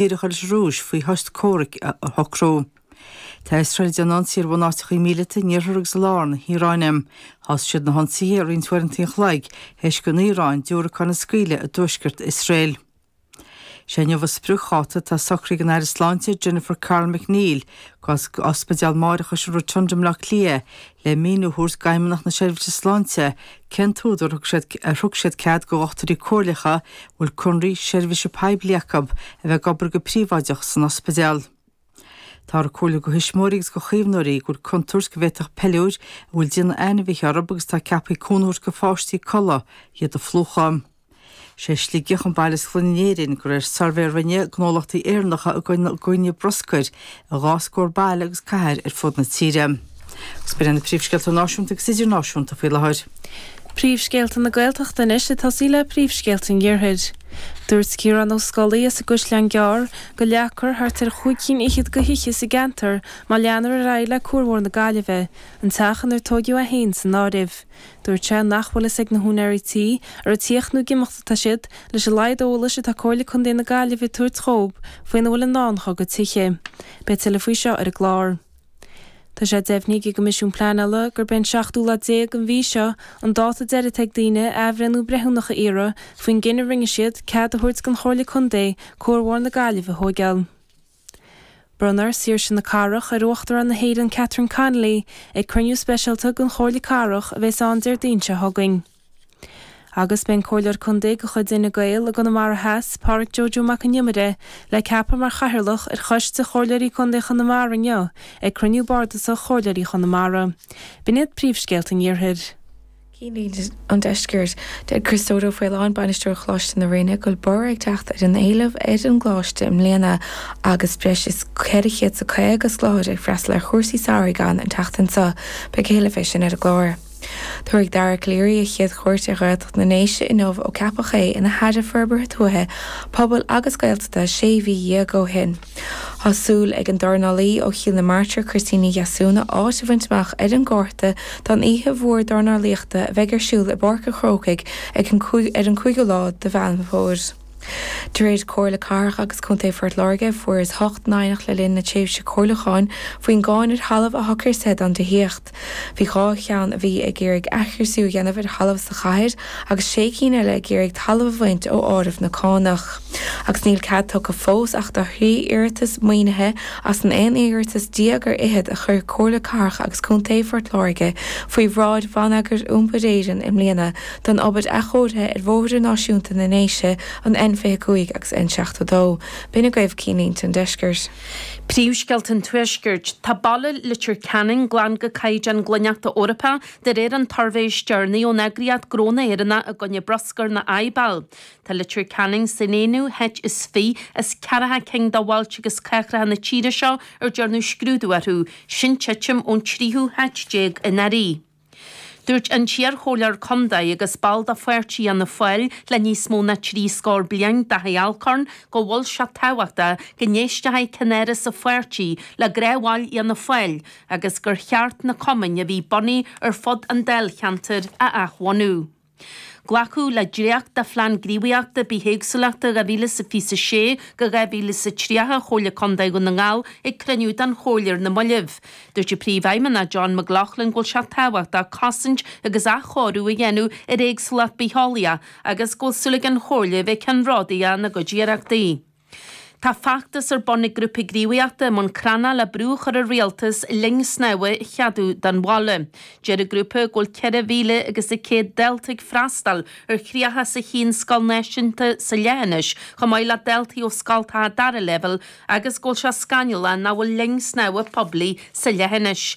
díreacha leis an Rúis faoi shos comhraic a shocrú. Tá Iosrael ag déanamh ionsaí ar bhunáiteachaí míleata in iarthar agus i lár na hIaráine. Thosaigh siad na hionsaithe roinnt uaireanta an chloig théis don Iaráin diúracáin a scaoileadh i dtuaisceart Iosrael. Is é inniu an spriocdháta atá socraithe ag an Aire Sláinte Jennifer Carroll MacNeill d'Ospidéal Máithreachais an Rotunda i mBleá Cliath le míniú a thabhairt d'Fheidhmeannacht na Seirbhíse Sláinte cén t-údar ar thug siad cead do dhochtúirí comhairleacha a bhfuil conradh seirbhíse poiblí acu a bheith ag obair go príobháideach san ospidéal. Táthar ag comhairliú do thuismitheoirí agus do chaomhnóirí go bhfuil contúirt go bhféadfadh peiliúir a bhfuil déanamh ainmhithe orthu agus atá ceaptha cúnamh a thabhairt do pháistí codladh iad a phlúchadh. Is é Sligeach an baile is glaine in Éirinn de réir suirbhé a rinne gnólachtaí Éireannacha i gcoinne bruscair i dhá scór baile agus cathair ar fud na tíre. Agus b'in na príomhscéalta náisiúnta agus idirnáisiúnta faoi láthair. Príomhscéalta na Gaeltachta anois, ag tosaí le príomhscéalta an iarthair. Dúirt Ciarán Ó Scolaí as an gCaisleán Gearr go leagfar thart ar chúig cinn fhichead de thithe sa gceantar má leanfar ar aghaidh le cuarbhóthar na Gaillimhe, an teach inar tóigeadh é féin san áireamh. Dúirt sé nach bhfuil fhios ag na húinéirí tí, an ag tíocht nó ag imeacht atá siad, leis an laghad eolais atá Comhairle Contae na Gaillimhe ag tabhairt dhób faoina bhfuil i ndán dhá gcuid tithe. Beidh tuilleadh faoi seo ar an gclár. Tá sé deimhnithe ag an gCoimisiún Pleanála gurb é an seachtú lá déag den mhí seo an dáta deiridh atá ag daoine athbhreithniú breithiúnach a iarraidh faoin gcinneadh a rinne siad cead a thabhairt don Chomhairle Contae cuarbhóthar na Gaillimhe a thóigeáil. Bronnfar Saoirse na Cathrach ar Uachtarán na hÉireann Catherine Connolly ag cruinniú speisialta den Chomhairle Cathrach a bheas ann Déardaoin seo chugainn. Agus beidh an Comhairleoir Contae de chuid Fhine Gael i gConamara Theas, Pádraig Joe Joe Mac an Iomaire, le ceapadh mar Chathaoirleach ar Choiste Chomhairleoirí Contae Chonamara inniu ag cruinniú bardasach Chomhairleoirí Chonamara. B'in iad príomhscéalta an iarthair. Cinnlínte an Deiscirt. Deir Criostóir Ó Faoláin, Bainisteoir Choláiste na Rinne, go bhfuil borradh ag teacht ar an éileamh ar an gcoláiste i mbliana agus breis is ceithre chéad is a caoga scoláire ag freastal ar chúrsaí samhraidh ann an tseachtain seo. Beidh a thuilleadh fé sin ar an gclár. Tabharfaidh Dara Calleary a chéad chuairt ar Ghaeltacht na nDéise inniu ó ceapadh é ina hAire Forbartha Tuaithe, Pobail agus Gaeltachta sé mhí dhéag ó shin. Tá súil ag an dornálaí ó Chill na Martra, Christina Ní Dheasúna, áit a bhaint amach ar an gcárta don oíche mhór dornálaíochta a bheidh ar siúl i bPáirc an Chrócaigh ar an 5ú lá de Mheán Fómhair. De réir Comhairle Cathrach agus Contae Phort Láirge, fuarthas ocht n-aighneacht le linn na tréimhse comhairliúcháin faoin gcáin ar thalamh atá criosaithe ann do thithíocht. Bhí dhá cheann a bhí ag iarraidh athchriosú a dhéanamh ar thalamh sa chathair agus sé cinn eile ag iarraidh talamh a bhaint ó áireamh na cánach. Agus níl cead tugtha fós ach do thrí iarratas maoinithe as an aon iarratas déag ar fhichead a chuir Comhairle Cathrach agus Contae Phort Láirge faoi bhráid Bhonneagar Iompair Éireann i mbliana don obair athchóirithe ar Bhóithre Náisiúnta na nDéise, an N25 agus N72, b'in agaibh cinnlínte an Deiscirt. Príomhscéalta an Tuaiscirt. Tá baile Leitir Ceanainn glan go caighdeán glaineachta Eorpach, de réir an tsuirbhé is deireanaí ón eagraíocht Gnó na hÉireann i gcoinne Bruscair nó IBAL. Tá Leitir Ceanainn san aonú háit is fiche as ceathracha cinn de bhailte agus cathracha na tíre seo ar déanadh scrúdú orthu, sin titim ón tríú háit déag anuraidh. Dúirt an t-iarchomhairleoir contae agus ball de pháirtí Fhianna Fáil le níos mó ná trí scór bliain, Daithí Alcorn, go bhfuil sé tábhachtach go n-éistfeadh ceannaire sa pháirtí le gnáthbhaill Fhianna Fáil agus gur cheart na cumainn a bhí bunaithe ar fud an dáilcheantair a athbhunú. Glacadh le dréacht de Phlean Gníomhaíochta Bithéagsúlachta 2026-2030 Chomhairle Contae Dhún na nGall ag cruinniú den Chomhairle ar na moillibh. Dúirt an Príomhfheidhmeannach John McLaughlin go bhfuil sé tábhachtach cosaint agus athchóiriú a dhéanamh ar éagsúlacht bitheolaíochta agus go bhfuil súil ag an Chomhairle a bheith ceannródaíoch ina gcuid iarrachtaí. Tá feachtas ar bun ag grúpa gníomhaíochta i mBun Cranncha le brú a chur ar rialtas linn snámha a cheadú don bhaile. Deir an grúpa go bhfuil ceithre mhíle agus a céad dalta ag freastal ar thríocha is a haon scoil náisiúnta sa leithinis chomh maith le daltaí ó scoltacha dara leibhéal agus go bhfuil sé scannalach nach bhfuil linn snámha poiblí sa leithinis.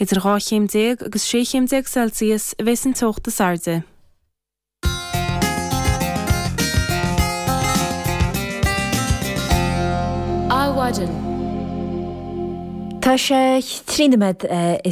Idir dhá chéim déag agus sé chéim déag Celsius a bheas an teocht is airde. Adhmhaidin. Tá sé trí nóiméad eh,